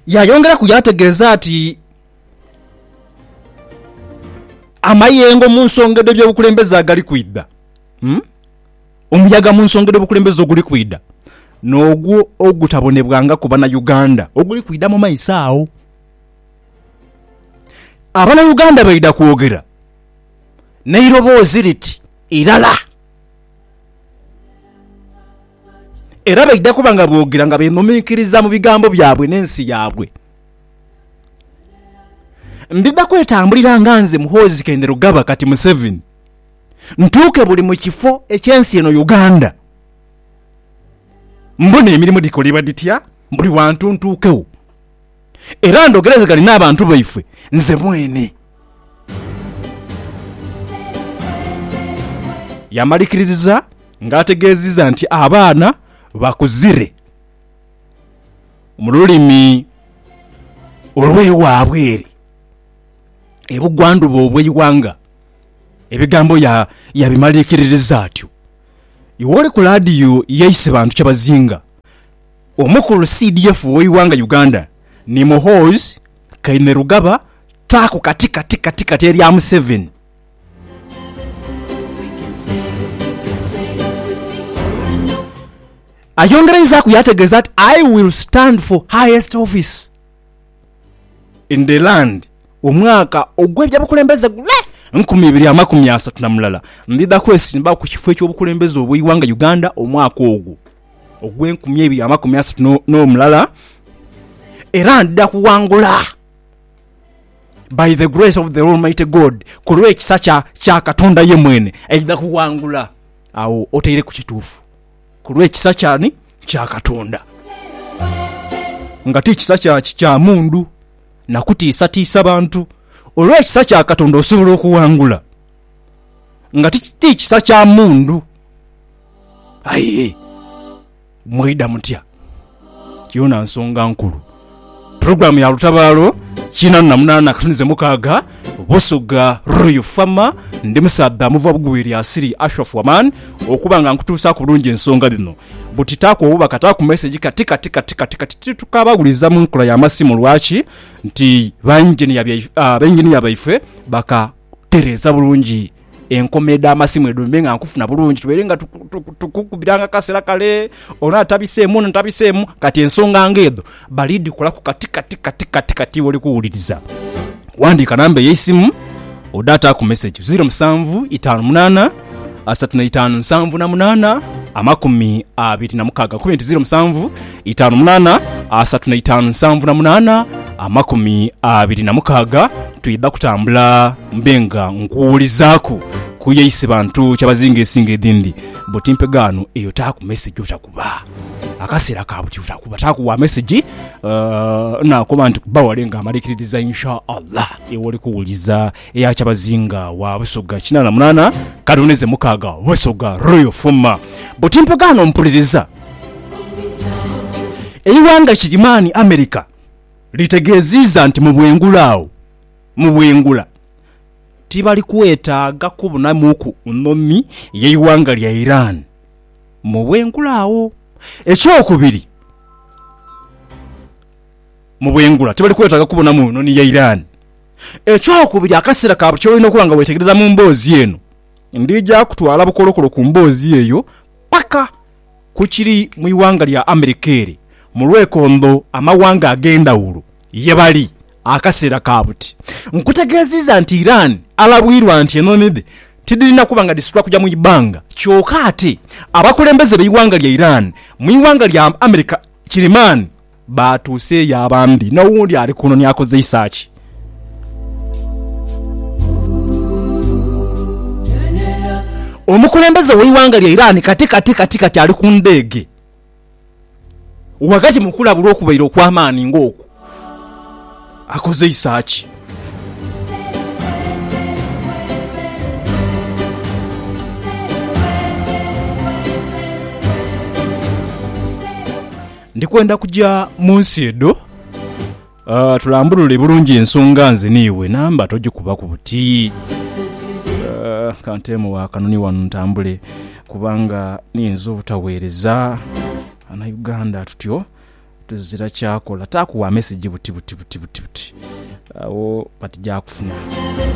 Yaayongeraku yaategeeza nti amayengo mu nsonga edh'ebyobukulembeze agali kwidha, omuyaga mu nsonga edh'obukulembeze oguli kwidha n'ogwo ogutabonebwangaku Bannayuganda oguli kwidha mu maiso agho. Abannayuganda baidha kwogera n'eiroboozi liti irala. Era baidha kuba nga boogera nga beenhuminkiriza mu bigambo byabwe n'ensi yaabwe. Ndidha kwetambulira nga nze Muhoozi Kainerugaba kati Museveni, ntuuke buli mu kifo eky'ensi eno Uganda, mbone emirimo dhikolebwa dhitya buli wantu ntuukegho era ndogerezegane n'abantu baife nze mwene. Yamalikiririza nga ategeziza nti abaana bakuzire mu lulimi olwewabwe ere e bugwandhuba obweighanga. Ebigambo yabimalikiririza atyo iwe oli ku laadiyo ye Isibantu Kyabazinga, omukulu CDF oweighanga Uganda ni Muhoozi Kainerugaba taaku kati kati kati kati erya Museveni. Ayongereizaaku yaategeeza nti, I will stand for highest office in the land omwaka ogw'ebyobukulembeze gule nkumi ibiri amakumi asatu na mulala, ndidha kwesimbawo ku kifo eky'obukulembeze obw'eighanga Uganda omwaka ogwo. ogw'enkumi eibiri amakumi asatu n'omulala, era ndidha kughangula by the grace of the almighty God, ku lw'ekisa kya Katonda ye mwene aidha kughangula. Agho otaireku kituufu, ku lw'ekisa ky'ani? Kya Katonda, nga ti kisa kya mundu na kutiisatiisa bantu. Olw'ekisa kya Katonda osobola okughangula, nga ti kisa kya mundu. Aye mwaidha mutya? Yoona nsonga nkulu. Pulogulaamu ya lutabaalo kinaana na munaana akatunize mukaaga Busoga Royal Fama ndi musaadha muva bugwi lya Siri Ashraf Waman okuba nga nkutuusaaku bulungi ensonga dhino. Buti taaku obubaka taaku mesegi kati kati kati kati kati titukabaghuliza mu nkola ya masimu lwaki nti ba yinginiya baife baka okutereeza bulungi enkoma edh'amasimu edho mbe nga nkufuna bulungi. Tubeire nga tukukubiranga akasera kale, ono atabiseemu, ono atabiseemu. Kati ensonga ng'edho bali dhikolaku kati kati kati kati kati wooli kuwuliriza. Ghandiika namba eyo eisimu odhe ataaku mesegi, zeero musanvu itaanu munaana, asatu na itaanu nsanvu na munaana amakumi abiri na mukaaga kube nti ziro musanvu itaanu munaana asatu na itaanu nsanvu na munaana amakumi abiri na mukaaga twidha kutambula mbe nga nkuwulizaaku kuyeise bantu kyabazinga esinga edhindi buti mpegaano eyo taaku message otakuba akaseera ka buti otakuba taaku wa message uh, nakoba nti kuba wale nga amalikiririza insha allah ewoli kuwuliza Eya Kyabazinga wa Busoga kinaana munaana Kadoneze mukaaga Busoga Royal Fuma buti mpogaano mpuliriza Eighanga Kigirimaani, America, litegeeziiza nti mu bwengula agho mu bwengula tibali kwetaaga kubunamuuku nhomi y'eighanga lya Iran mu bwengula agho. Ekyokubiri mu bwengula tibali kwetaaga kubunamu nhomi ya Iran. Ekyokubiri, akaseera ka buli ky'olina okuba nga weetegereza mu mboozi eno. Ndija kutwala bukolokolo ku mboozi eyo paka ku kiri mu ighanga lya Amerika ere mu lwekondho amawanga ag'endhawulo ye bali akaseera ka buti. Nkutegeeziiza nti Iran alabwirwa nti enhonhi dhe tidhirina kuba nga dhisitula kuja mu ibbanga. Kyoka ate abakulembeze b'eighanga lya Iran mu ighanga lya Amerika kirimaani. Baatuuse yo abambi. N'owundi ali kuno ni akozeisa ki? Omukulembeze w'eighanga lya Iran kati kati kati kati ali ku ndege ghagati mu kulabulwa okubaire okw'amaani ng'okwo. Akozeisa ki? Ndi kwenda kuja mu nsi edho. Tulambulule bulungi ensonga nze n'iwe, namba togikubaku buti. Ka nteemugho akanoni ghano ntambule kubanga niyinza obutaweereza Banauganda tutyo tuzira kyakola. Taaku wa mesegi buti buti buti buti, agho batija kufuna.